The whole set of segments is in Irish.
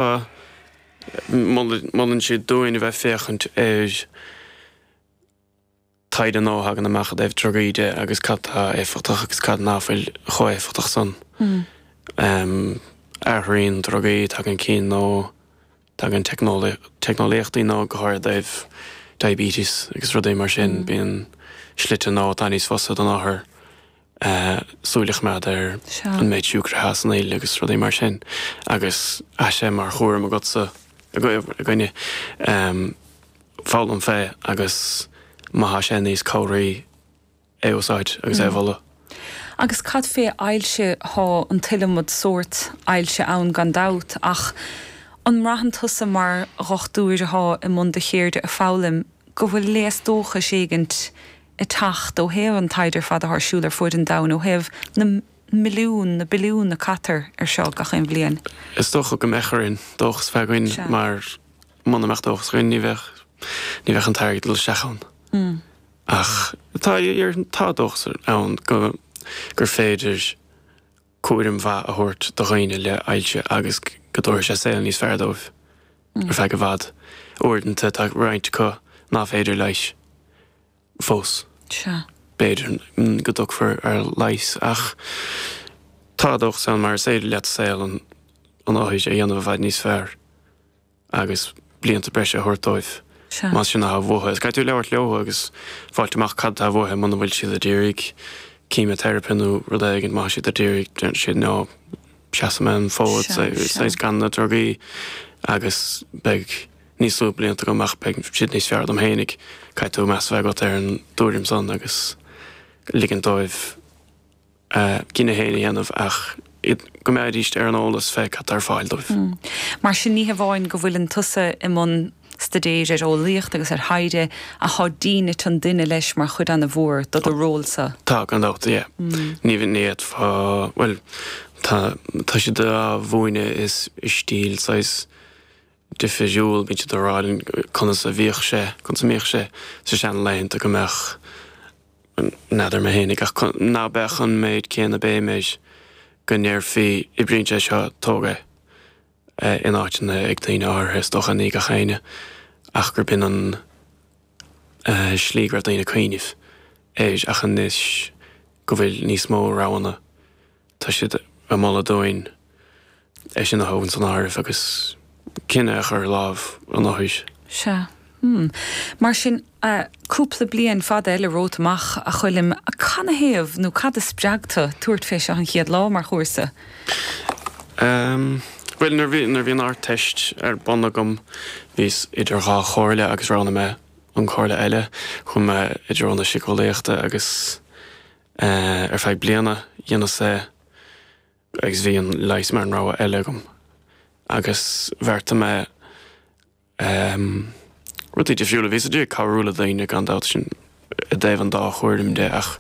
a molann siad dúinn a bheith féachaint ar taighde nua a thagann amach i dtaobh drugaí de agus cad tá éifeachtach agus cad ná fuil chomh éifeachtach san. Athraíonn drugaí, tagann cinn nua, tagann teicneolaíochtaí nua go háirid i dtaobh diabetes agus rudaí mar sin, bíonn slite nua atá níos fusa don othar. súil a choimeád ar an méid siúcra atá san fhuil agus rudaí mar sin agus tá sé mar chúram agatsa againne foghlaim fé agus má tá sé níos cabhraí é a úsáid agus é a mholadh. Agus cad fé ailse, tá an t-iliomad sórt ailse ann gan dabht ach an mbraitheann tusa mar dhochtúir atá i mbun do cheirde a fhoghlaim go bhfuil léas dóchais éigint ag teacht ó thaobh an taighde ar fad atá ar siúl ar fuaid an domhain, ó thaobh na milliún, na billiún a caitear ar seo gach aon bhliain. Is dócha go mbeadh orainn dóchas a bheith againn mar muna mbeadh dóchas againn ní bheadh, ní bheadh an t-airgead ag dul isteach ann. Ach tá, tá dóchas ann go, gur féidir. cúram mhaith a thabhairt do dhaoine le hailse agus go dtabharfaidh sé saol níos fearr dóibh ar feadh i bhfad. Uaireanta tá roinnt acu nach féidir a leigheas fós. Sea. b'fhéidir go dtiocfar ar leigheas ach tá dóchas ann mar is féidir leat saol an othair a dhéanamh i bhfad níos fearr. agus blianta breise a thabhairt dóibh más sin atá uathu. Caithfidh tú labhairt leo agus fáilt amach cad atá uathu muna bhfuil siad ag iarraidh címioteiripe nó rud éigin. Má tá siad ag iarraidh, déarfaidh siad nó seasfaidh mé an fód saghas gan na drugaí agus beidh níos lú blianta agam ach beidh siad níos fearr dom fhéinig. Caithfidh tú meas a bheith agat ar an dtuairim san agus ligint dóibh. gcinneadh féin a dhéanamh ach iad go mbeidís ar an eolas fé cad atá ar fáil dóibh. Mar sin ní hamháin go bhfuileann tusa i mbun staidéir ar eolaíocht agus ar thaighde ach tá dínit an duine leis mar chuid ana mhór do do ról sa. Tá, gan dabht, yeah. Ní fhéadfá, bhuel, tá siad á mhúineadh i stíl saghas difiriúil bíonn siad á rá linn conas a bhíodh sé, conas a mbíodh sé sa sean laethanta go mbeadh, n'fheadar mé fhéinig ach ná beadh an méid céanna béim air go ndéarfaí oibríonn sé seo, tóg é, in áiteanna ag daoine áirithe is dócha ní gach éinne ach gur b'in an slí go raibh daoine ag cuimhneamh air ach anois go bhfuil níos mó roghanna. Tá siad ag moladh dúinn é sin a thabhairt san áireamh agus cinneadh a chur ar láimh an Fhorais. Sea. Hm. Mar sin, cúpla bliain fada eile romhat amach, a Choilm. Canathaobh, nó cad a spreag tu tabhairt fé seo an chéad lá, mar chúrsa? Ahm, bhuel, nuair bhí, nuair bhí an Ardteist ar bun agam, bhíos idir dhá chomhairle agus roghnaigh mé an comhairle eile. Chuaigh mé i dtreo na síceolaíochta agus Ar feadh bliana, dheineas é agus bhí an leigheas mar an rogha eile agam. Agus bheartaigh mé rudaí difriúla. Bhíos a d'iarraidh cabhrú le daoine, gan dabht, sin i dtaobh an dá chomhairle de, ach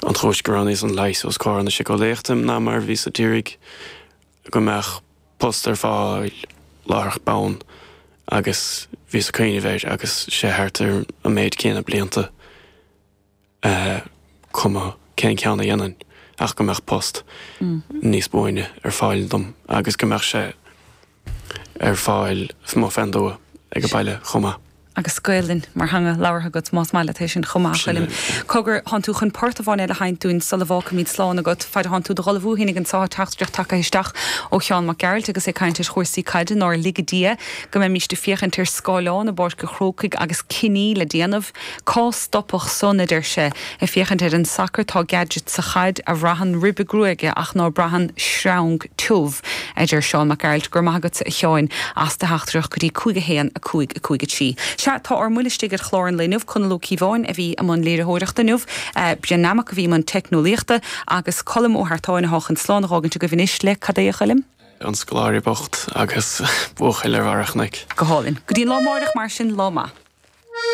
an chúis go roghnaíos an leigheas os comhair na síceolaíochta ná mar bhíos a d'iarraidh go mbeadh post ar fáil láithreach bonn agus bhíos ag cuimhneamh air agus sé thart ar an méid céanna blianta. cuma cén ceann a dhéanfainn, ach go mbeadh post níos buaine ar fáil dom agus go mbeadh sé ar fáil i mo cheantar age baile chomh maith. agus Gaelainn mar theanga labhartha agat más maith leat é sin chomh maith, a Choilm. Cogar, thánn tú chun port amháin eile a sheinnt dúinn sula bhfágfaimid slán agat. Faid a thánn tú dod ullmhú féinig ansan tá teachtaireacht tagaithe isteach ó Sheán Mac Gearailt agus é ag caint ar chúrsaí caide, nár lige Dia go mbeimíst ag féachaint ar scáileán i bPáirc an Chrócaigh agus cinní le déanamh. Cá stopfadh san, a deir sé, ag féachaint ar an sacar, tá Gadget sa chaid, a bhraitheann ribe gruaige ach ná braitheann sreang tiubh, a deir Seán Mac Gearailt, Go raibh maith agatsa, a Sheáin, as do theachtaireacht go dtí 5 1 5 5 3. Sea, tá ár mbuille istigh ar chlár an lae inniu, Conall Ó Cíobháin a bhí i mbun léiritheoireachta inniu, Bren Nammock a bhí i mbun teicneolaíochta, agus Colm Ó hEartáin atá chun slán a dh'fhágaint agaibh anois le, cad é a Choilm? an scoláire bocht agus buachaill ar bharra an chnoic. Go hálainn. Go dtí an lá amáireach mar sin, lá maith.